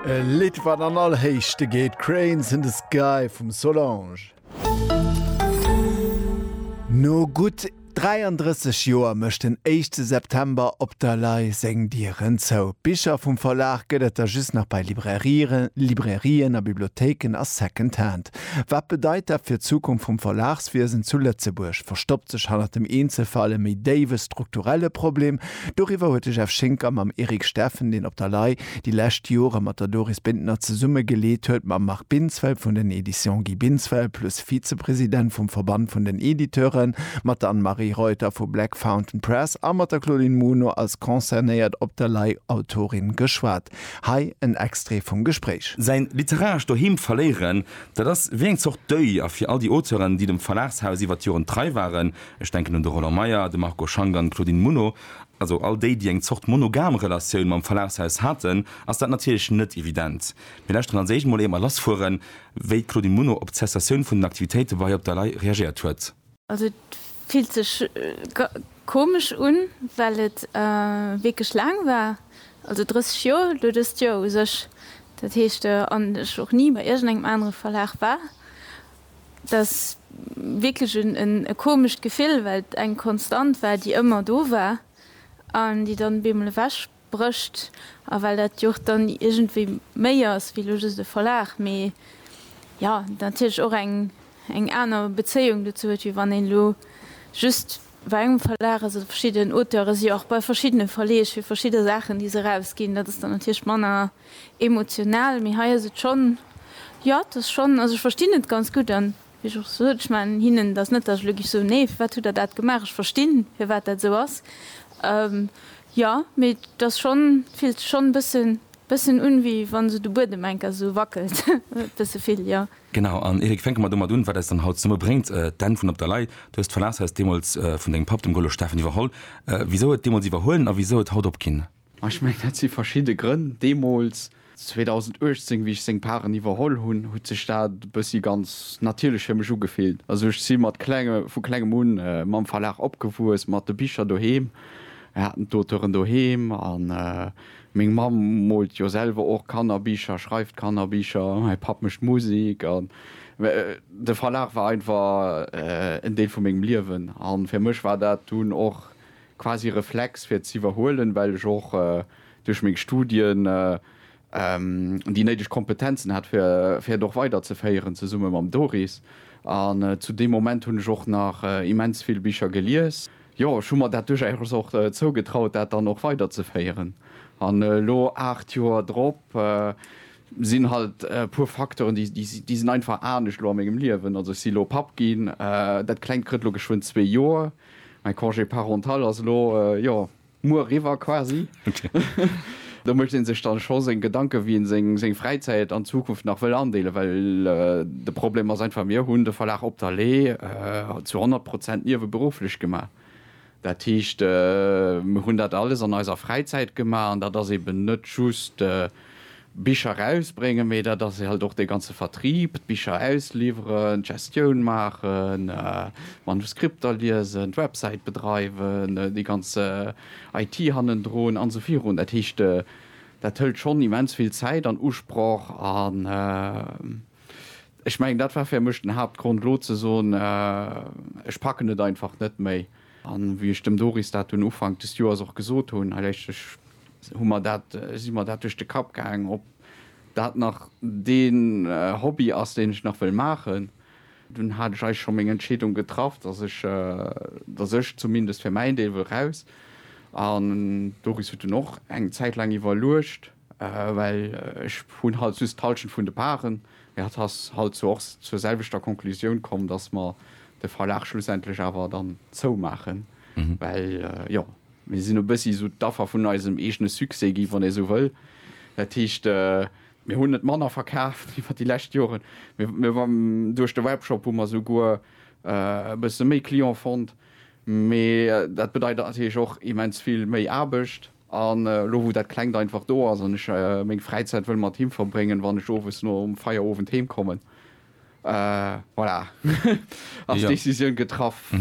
E Lidd wat an all Héichte geet, Cranes in the Sky vum Solange. No gutt 33 Joer mécht den éischte September op der Lay seng Dieren zou. Bicher vum Verlag gëtt et der just nach bei Librairien, Librairien a Bibliothéiken a Second Hand. Wat bedeit dat fir d'Zukunft vum Verlagswiesen zu Lëtzebuerg? Verstoppt sech hannert dem Eenzelfall e méi déiwe strukturelle Problem? Doriwwer huet de Jeff Schinker mam Eric Steffen, deen op der lei, déi lescht Jore mat der Doris Bintner zesumme geleet huet, mam Marc Binsfeld vun den Editions Guy Binsfeld plus Vizepresident vum Verband vun den Editeuren, mat der Anne-Marie Reuter vu Black Fountain Press a mat der Claudine Muno als concernéiert op der lei Autorin geschwat. Hei en Extrait vum Gespréich. Säin literarescht Doheem verléieren, dat ass wéi eng Zort Deuil. A fir all déi Auteuren, déi dem Verlagshaus iwwer d'Joren trei waren, ech denken un de Roland Meyer, de Marco Schank an d'Claudine Muno, also all déi, déi eng Zort monogam Relatioun mam Verlagshaus haten, ass dat natierlech net evident. Mir lauschteren als éischt mol, éier mer lassfueren, wéi d'Claudine Muno op d'Cessatioun vun den Aktivitéite bei Op der Lay reagéiert huet. Also et fillt sech komesch un, well et wierklech laang war, also 30 Joer, elo dëst Joer u sech, dat heescht an ech och ni bei iergendengem anere Verlag war. Et ass wierklech e komescht Gefill, well et eng Konstant war, déi ëmmer do war an déi dann op eemol ewech Brécht, a well dat jo och dann iergendwéi méi ass wéi elo just e Verlag, mee jo natierlech och eng eng aner Bezéiung dozou huet, wéi wann een elo just bei engem Verlag ass oder verschidden Auteure si jo och bei verschiddene Verleeg fir verschidde Saachen, déi se erausginn. Dat ass dann natierlech manner emotional, mee hei ass et schonn, jo et ass schonn, also ech verstinn et ganz gutt an Wéi ech och sot, ech man hinnen, et ass net, datt ech elo giff soen, nee, firwat hutt Der dat gemaach, ech verstinn, firwat dat esou ass. Jo, mee et ass schonn, et fillt sech schonn e bësse, bëssen un, wéi wa sou de Buedem enker esou wackelt, e bësse vill, jo. Genau. An Eric, fänke mer domat un, wat eis dann haut zesumme bréngt, d'Enn vun Op der Lay. Du hues d'Verlagshaus deemools vun dengem Papp, dem Golo Steffen, iwwerholl. Wisou et deemools iwwerhuelen a wisou et haut opginn? A ech mengen, dat si verschidde Grënn. Deemools, 2018, wéi ech seng Paren iwwerholl hunn, huet sech dat e bëssi ganz natierlech fir mech ugefillt. Also ech si mat klenge, vu klengem un mam Verlag opgewuess, mat de Bicher doheem. Mir haten d'Auteuren doheem a meng Mamm moolt jo selwer och Kannerbicher, schreift Kannerbicher, mäi Papp mécht Musek. An de Verlag war einfach en Deel vu mengem Liewen. A fir mech war dat dunn och. quasi Reflex fir ze iwwerhuelen, well ech och duerch meng Studien déi néideg Kompetenzen hat fir fir et och weiderzeféieren zesumme mam Doris. An zu deem Moment hunn ech och nach immens vill Bicher gelies. Jo, ech hu mer dat duerchaus och zougetraut dat dann och weiderzeféieren. An elo 8 Joer drop sinn halt e puer Facteuren déi déi sinn einfach anescht elo a mengem Liewen. Also ech si elo Papp ginn, dat klengt krëtt elo geschwënn zwee Joer. Mäi Congé parental ass elo, jo, muer eriwwer quasi. Do mécht ee sech dann scho seng Gedanken, wéi een seng Fräizäit an Zukunft nach wëll andeelen, well de Problem ass einfach, mir hunn de Verlag Op der Lee zu 100 Prozent nieweberufflech gemaach. Dat heescht, mir hunn dat alles an eiser Fräizäit gemaach an dat ass eben net just, Bicher erausbréngen, mee dat ass halt och dee ganze Vertrieb, d'Bicher ausliwweren, d'Gestioun maachen, d'Manuskripter liesen, d'Websäit bedreiwen, déi ganz IT hannendrun an esou virun. Dat heescht, dat hëlt schonn immens vill Zäit an Usproch an ech mengen, dat war fir mech den Haaptgrond, elo ze soen, ech packen et einfach net méi. An wéi ech dem Doris dat dunn Ufank des Joers och gesot hunn, hei, ech, hu mer dat, si mer dat duerch de Kapp gaang, ob dat nach dee Hobby ass, deen ech nach wëll maachen. Dunn hat ech eigentlech scho meng Entscheedung getraff, dass ech, dass ech zumindest fir mäin Deel wëll raus. An d'Doris huet dunn och eng Zäit laang iwwerluecht, well ech hunn halt just d'Hallschent vun de Parten. Mee hatt ass halt zwar och zur selwechter Conclusioun komm, dass mer de Verlag schlussendlech awer dann zoumaachen, well jo, Mir sinn e bëssi esou d'Affer vun eisem eegene Succès gi, wann ee esou wëll. Dat heescht, mir hunn net manner verkaaft iwwer déi lescht Joren, mä duerch de Webshop hu mer souguer e bësse méi Client fonnt. Mee dat bedeit natierlech och immens vill méi Aarbecht. An elo wou dat Klengt einfach do ass an ech meng Fräizäit wëll mat him verbréngen, wann ech owes nom Feierowend heemkommen, Voilà, ass d'Decisioun getraff.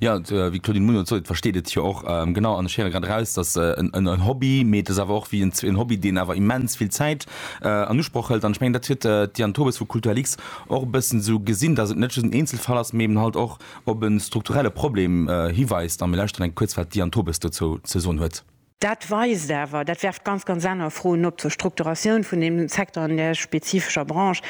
Jo, wéi d'Claudine Muno sot, versteet et jo och. Genau, an ech héiere grad eraus, dass en Hobby, mee et ass awer och wéi en Hobby, deen awer immens vill Zäit an Usproch hëlt. An ech mengen, dat huet d'Diane Tobes vu Kulturlix och e bëssen esou gesinn, dass et net just en Eenzelfall ass, mee eben halt och op e strukturelle Problem hiweist. A mir lauschteren eng kuerz, wat d'Diane Tobes dozou ze soen huet. Dat weist awer, dat werft ganz, ganz aner Froen op zur Strukturatioun vun deem Secteur an där spezifescher Branche,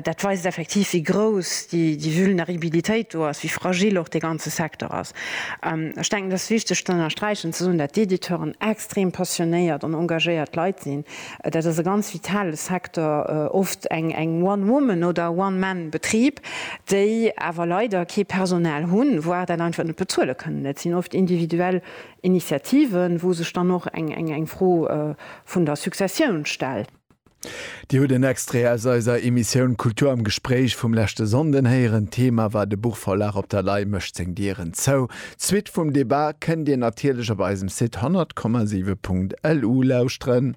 dat weist effektiv, wéi grouss déi Vulneribilitéit do ass, wéi fragil och dee ganze Secteur ass. Ech denken, et ass wichteg z'ënnersträichen, ze soen, dat d'Editeuren extrem passionéiert an engagéiert Leit sinn. Dat ass e ganz vitale Secteur, oft eng One-Woman oder One-Man-Betrib, déi awer leider kee Personal hunn, voire dat einfach net bezuele kënnen. Dat sinn oft individuell Initiativen, wou sech dann och eng Fro vun der Successioun stellt. Dir hutt en Extrait aus eiser Emissioun Kultur am Gespréich vum leschte Sonnden héieren. D'Thema war De Buchverlag Op der Lay mécht seng Dieren zou. D'Suite vum Debat kënnt Dir natierlech op eisem Site 100,7.lu lauschteren.